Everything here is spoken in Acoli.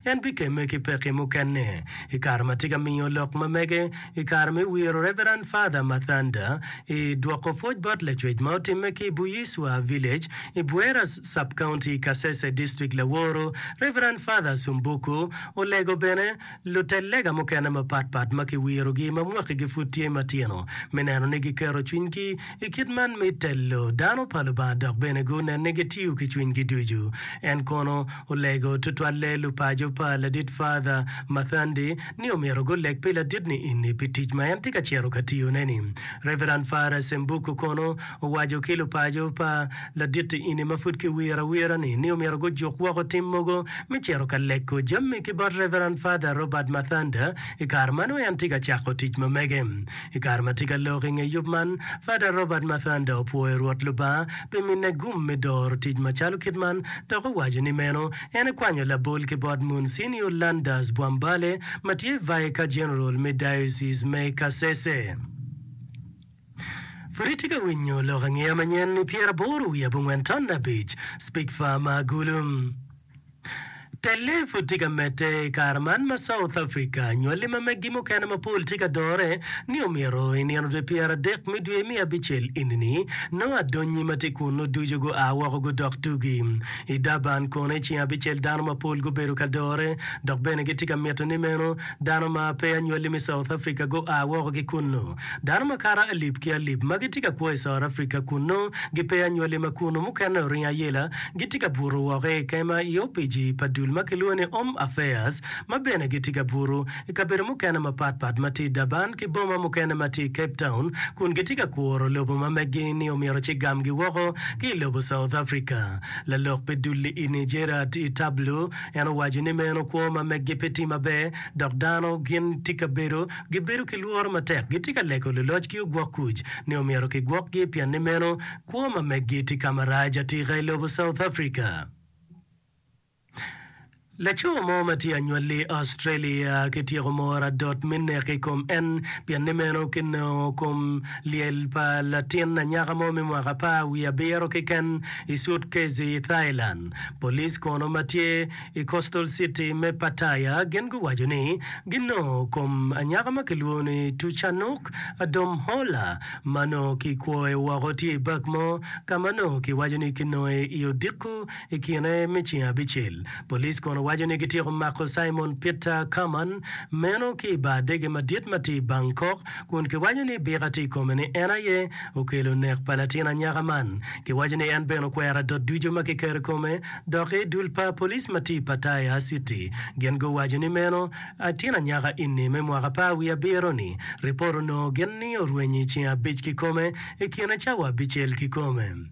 En bikemme ki pekki mukene. I kare ma tye ka miyo lok ma mege i kare me wiro Reverend Father Mathanda i dwoko pwoc bot lacwec ma otimme ki i Buyiswa Village i Bueras Sub-County i Kasese District laworo Reverend Father Sumbuku olego bene lutel lega mukene mapatpat ma kiwirogi ma mwakigi pud tye matino me neno ni giketo cwinygi I kit man me telo, dano pa Lubanga dok bene gunen ni gitiyo ki cwinygi ducu. En kono olego tutwalle lupaco pa Ladit Father Mathandi ni omyero guleg pi ladit niini pi tic ma en tye ka cito ka tiyone-ni. Reverend Father Sembuku kono owaco ki lupaco pa ladit ini ma pud kiwiro awira-ni ni omyero gujuk woko tim mogo me cito ka lego jami ki bot Reverend Father Robert Mathanda i kare ma nongo en tye ka cako tic ma mege. I kare ma tye ka lok i nge yub man, Fada Robert Mathanda opwoyo Rwot Lubanga pi mine gum me doro tic macalo kit man dok owaco ni meno en ekwanyo labol ki bot Munsinio Landers Bwambale ma tye Vicar General me Diocese me Kasese. Pud itye ka winyo lok angeya manyen i pyeraboro wiye abongwen ton abic, Speak Far ma Agulu. Telle pud tye ka medde i kare man ma South Africa nywali ma meggi mukene mapol tye ka dore ni omyero i nino dwe pyeradek me dwe me abicel eni-ni nongo adonyi ma tye kunnu ducu gua woko gudok tugi. I Durban kono i ceng abicel dano mapol gubedo ka dore dok bene gitye ka mito ni meno dano ma peya nywali me South Africa gua woko ki kunnu. Dano makato alip ki alip ma gitye ka kwo i South Africa kunnu gipeya nywali ma kunnu mukene oringo ayela gitye ka buto woko i kema i opici pa dul ma kilwongo ni Home Affairs, ma bene gitye ka buto i kabedo mukene mapat pat ma tye i Durban ki boma mukene ma tye i Cape Town kun gitye ka kuro lobo ma meggi ni omyero cigamgi woko ki i lobo South Africa. Lalok pi dul-li ini Gerard Itablo en owaco ni meno kwo ma meggi pe tye maber dok dano gin tye ka bedo gibedo ki lworo matek gitye ka lego luloc ki ogwok kuc ni omyero kigwokgi pien ni meno Kwoma me Gitti Kamaraj atika i lobo South Africa. Laco mo ma tye anywalli i Australia ki tyeko moro adot me nek i kom en pien ni meno ki nongo kom lyel pa latin anyaka mo me mwaka apar wiye abiro keken i sutkezi i Thailand. Police kono ma tye I coastal city me Pattaya gin guwaco ni ginongo kom anyaka ma kilwongo ni Tuchanuk Adhomhola ma nongo ki kwoe woko tye i bak mo ka ma nongo ki waco ni ki nonge i odiko i kine me ceng abicel. Police kono waco ni gityeko mako Simon Peter Kaman meno ki i bar dege madit ma tye i Bangkok kun ki waco ni bika tye i kome ni en aye okelo nek pa latin anyaka man. Ki waco ni en bene okwero adot ducu ma ki keto i kome Dok i dul pa police ma tye i Pattaya city, gin guwaco ni meno atin anyaka ini me mwaka par wiye abiro ni ripot onongo gin ni orwenyi ceng abic kikome ikine cawa abicel kikome.